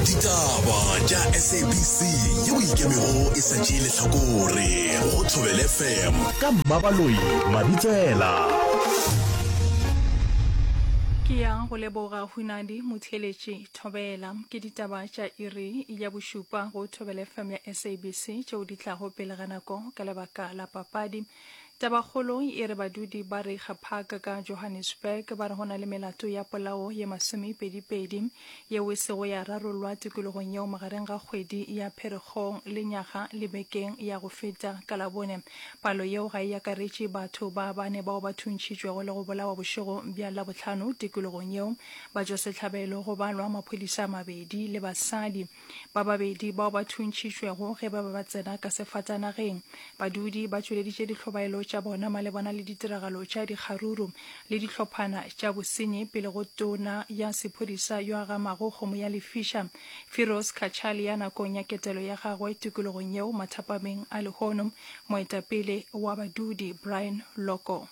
ditaba tša sabc yeo ikemego e sa tšee lehlakore go thobele fm ka mmabaloi mabitsela ke yang go leboga hunadi motheeletši thobela ke ditaba tša iri ya bošupa go thobele fm ya sabc tšeo di tlago pele ga nako ka lebaka la papadi Tabakgolo e re badudi ba Reiger Park ka Johannesburg ba re go na le melato ya polao ye masomepedi-pedi yeo e sego ya rarolwa tikologong yeo magareng ga kgwedi ya Pherekgong le nyaga le bekeng ya go feta ka Labone. Palo yeo ga e akaretše batho ba bane bao ba thuntšhitšwego le go bolawa bošego bja Labohlano tikologong yeo, batšwasehlabelo go balwa maphodisa a mabedi le basadi. Ba babedi bao ba thuntšhitšwego ge ba be ba tsena ka sefatanageng, badudi ba tšweleditše dihlobaelo tša bona malebana le ditiragalo tša dikgaruru le dihlophana tša bosenyi pele go tona ya sephodisa yo a gamago kgomo ya lefiša, Firoz Cachalia nakong ya ketelo ya gagwe tikologong yeo mathapameng a lehono moetapele wa badudi Brian Loco.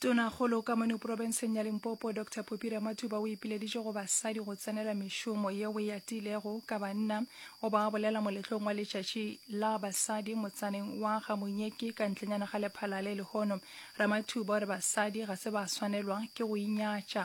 Tonakgolo ka mono profenseng ya Limpopo, Doctor Poppy Ramathuba o ipileditše go basadi go tsenela mešomo yeo e atilego ka banna o ba bolela moletlong wa letšatši la basadi motsaneng wa ga Monyeki ka ntlenyana ga lephalale. Lehono Ramathuba o re basadi ga se ba swanelwa ke go inyatša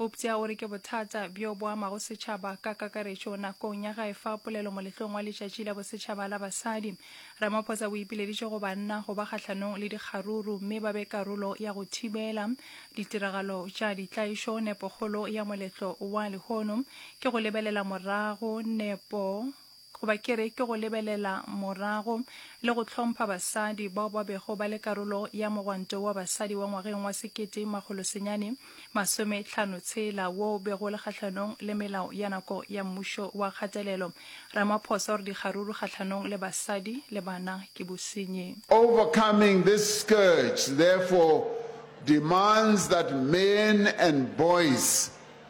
Euptsa o re ke bothata bjo bo amago setšhaba ka kakaretšo nakong ya gae fa polelo moletlong wa letšatši la bosetšhaba la basadi. Ramaphosa o ipileditše go banna go ba kgahlanong le dikgaruru mme ba be karolo ya go thibela ditiragalo tša ditlaišo. Nepokgolo ya moletlo wa lehono ke go lebelela morago nepo Goba ke re, ke go lebelela morago le go hlompha basadi bao ba bego ba le karolo ya mogwanto wa basadi wa ngwageng wa sekete makgolo senyane masome tlhano tshela wo o bego o le kgahlanong le melao ya nako ya mmušo wa kgatelelo Ramaphosa o re dikgaruru kgahlanong le basadi le bana ke bosenyi. Overcoming this scourge therefore demands that men and boys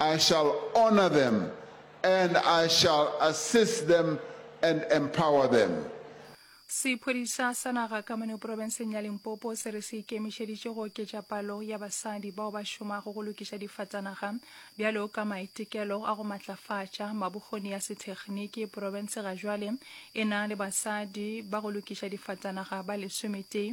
I shall honour them and I shall assist them and empower them. Sephodisa sa naga ka mono profenseng ya Limpopo se re se ikemišeditše go oketša palo ya basadi bao ba šomago go lokiša difatanaga bjalo ka maitekelo a go matlafatša mabokgoni ya sethekniki. Profense ga jwale e na le basadi ba go lokiša difatanaga ba lesometee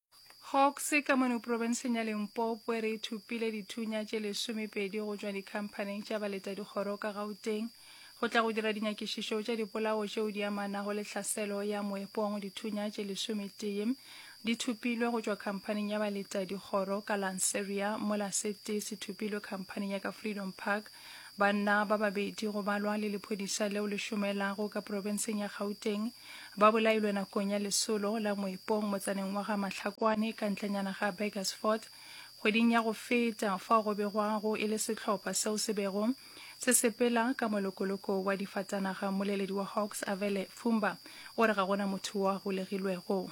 Hawks ka mono profenseng ya Limpopo e re e thupile dithunya tše lesomepedi go tšwa dikhamphaneng tša baleta dikgoro ka Gauteng go tla go dira dinyakišišo tša dipolao tšeo di amanago le tlhaselo ya moepong. Dithunya tše lesometee di thupilwe go tšwa khamphaneng ya baleta dikgoro ka Lanseria mola sete se thupilwe khamphaneng ya ka Freedom Park. Banna ba babedi go balwa le lephodisa leo le šomelago ka profenseng ya Gauteng Ba bolailwe nakong ya lesolo la moepong motsaneng wa ga Mahlakwane ka ntlenyana ga Burgersfort kgweding ya go feta fao go begwago e le sehlopha seo se bego se sepela ka molokoloko wa difatanaga. Moleledi wa Hawks Avele Fumba o re ga gona motho wa golegilwego.